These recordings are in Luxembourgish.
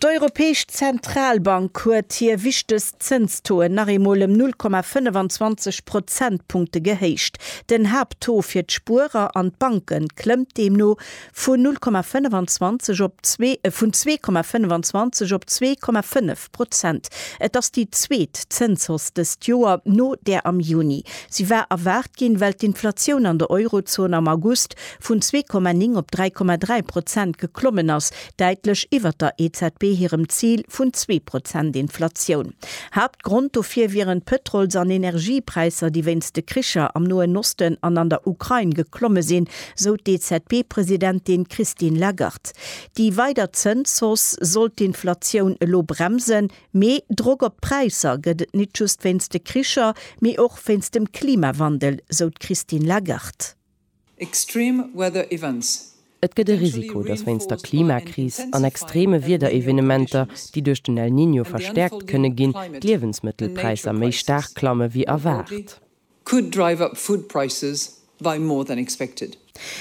D'Europäesch Zentralbank huet hir wichtegst Zënstoen nach eemol ëm 0,25 Prozentpunkte gehéicht. Den Haapttaux fir d'Spuerer an d'Banke klëmmt deemno vun 0,25 op zwee, äh vun 2,25 op 2,5 Prozent. Et ass déi zweet Zënshausse dëst Joer, no där am Juni. Si war erwaart ginn, well d'Inflatioun an der Eurozon am August vun 2,9 op 3,3 Prozent geklommen ass, däitlech iwwert der EZB hirem Zil vun zwee Prozent Inflatioun. Haaptgrond dofir wieren d'Pëtrols an Energiepräisser, déi wéinst de Kricher am Noen Osten an an der Ukrain geklomme sinn, sou d'EZB-Presidentin Christine Lagarde. Déi weider Zënshausse soll d'Inflatioun elo bremsen, mee Drock op d'Präisser gëtt et nit just wéinst de Kricher, mee och wéinst dem Klimawandel, sou d'Christine Lagarde. Extreme weather events. Et gëtt e Risiko, dass wéinst der Klimakris an extreme Wiederevenementer, déi duerch den El Niño verstäerkt kënne ginn, d'Liewensmëttelpräisser méi staark klamme wéi erwaart.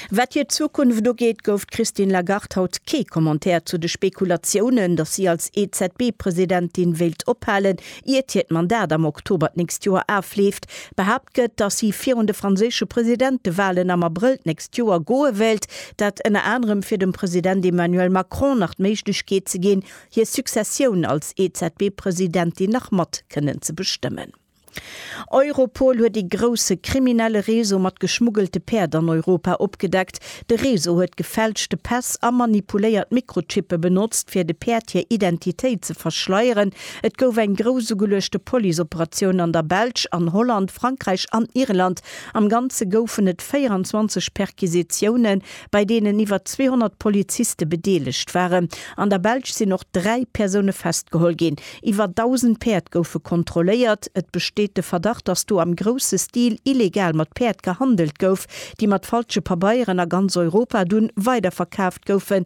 Wat hir Zukunft ugeet, gouf d'Christine Lagarde haut kee Commentaire zu de Spekulatiounen, dass si als EZB-Presidentin wéilt ophalen. Iert hiert Mandat am Oktober d'nächst Joer afleeft, behaapt gëtt, datt si virun de franséische Presidentewalen am Abrëll d'nächst Joer goe wéilt, dat ënner anerem fir dem President Emmanuel Macron nach d'Méiglechkeet ze ginn, hir Successioun als EZB-Presidentin nach mat kënnen ze bestëmmen. Europol huet ee grousse kriminelle Réseau mat geschmuggelte Päerd an Europa opgedeckt. De Réseau huet gefälschte Päss a manipuléiert Mikrochippe benotzt, fir de Päerd hir Identitéit ze verschleieren. Et gouf eng grouss ugeluechte Police-Operatioun an der Belsch, an Holland, Frankräich an Irland. Am Ganze goufen et 24 Perquisitiounen, bei deenen iwwer 200 Poliziste bedeelegt waren. An der Belsch sinn och dräi Persoune festgeholl ginn. Iwwer 1.000 Päerd goufe kontrolléiert. Et besteet de Verdacht, datt do am grousse Stil illegal mat Päerd gehandelt gouf, déi mat falsche Pabeieren a ganz Europa dunn weiderverkaaft goufen.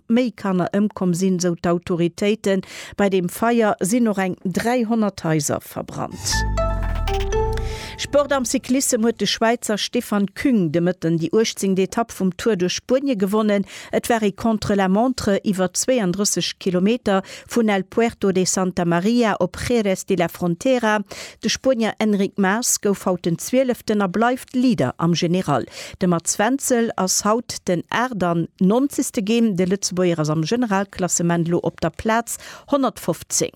méi Kanner ëmkomm sinn, esou d'Autoritéiten. Bei deem Feier sinn och eng 300 Haiser verbrannt. Sport Am Cyclissem huet de Schwäizer Stefan Küng de Mëtten déi uechtzéngt Etapp vum Tour duerch Spuenie gewonnen. Et war ee Contre-la-montre iwwer 32 Kilometer vun El Puerto de Santa Maria op Jerez de la Frontera. De Spuenier Enric Mas gouf haut den Zwieleften a bleift Leader am General. De Mats Wenzel ass haut den 98. Gem. De Lëtzebuerger ass am Generalklassement elo op der Plaz 115.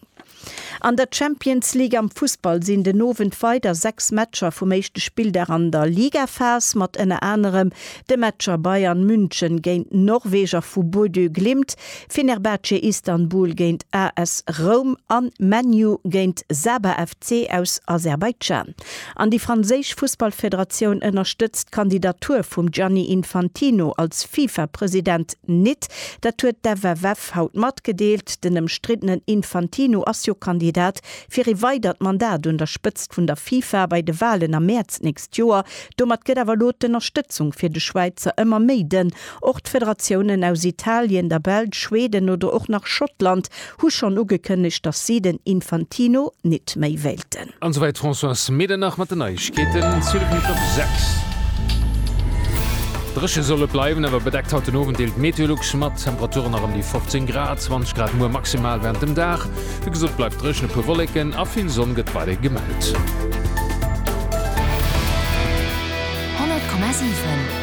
An der Champions League am Fussball sinn den Owend weider 6 Matcher vum éischte Spilldag an der Ligaphas mat ënner anerem de Matcher Bayern München géint Norweger vu Bodø Glimt, Fenerbahce Istanbul géint AS Roum a Man U géint Sabah FC aus Aserbaidschan. An déi franséisch Fussballfederatioun ënnerstëtzt d'Kandidatur vum Gianni Infantino als FIFA-President nit. Dat huet d'FFF haut matgedeelt. Den ëmstriddenen Infantino ass jo Kandidat fir ee weidert Mandat un der Spëtzt vun der FIFA bei de Walen am Mäerz d'nächst Joer. Domat gëtt awer elo d'Ënnerstëtzung fir de Schwäizer ëmmer méi dënn. Och d'Federatiounen aus Italien, der Belsch, Schweden oder och nach Schottland hu schonn ugekënnegt, datt si den Infantino nit méi wéilten. An esouwäit d'Françoise Medernach mat den Neiegkeeten. Sylvie Mesch op 6. Dréche soll et bleiwen, awer bedeckt haut den Owend deelt d'Meteolux mat. Temperaturen nach ëm déi 15 Grad, 20 Grad muer maximal wärend dem Dag. Wéi gesot, bleift dréchen, e puer Wolleken a vill Sonn gëtt weiderhi gemellt. 100,7.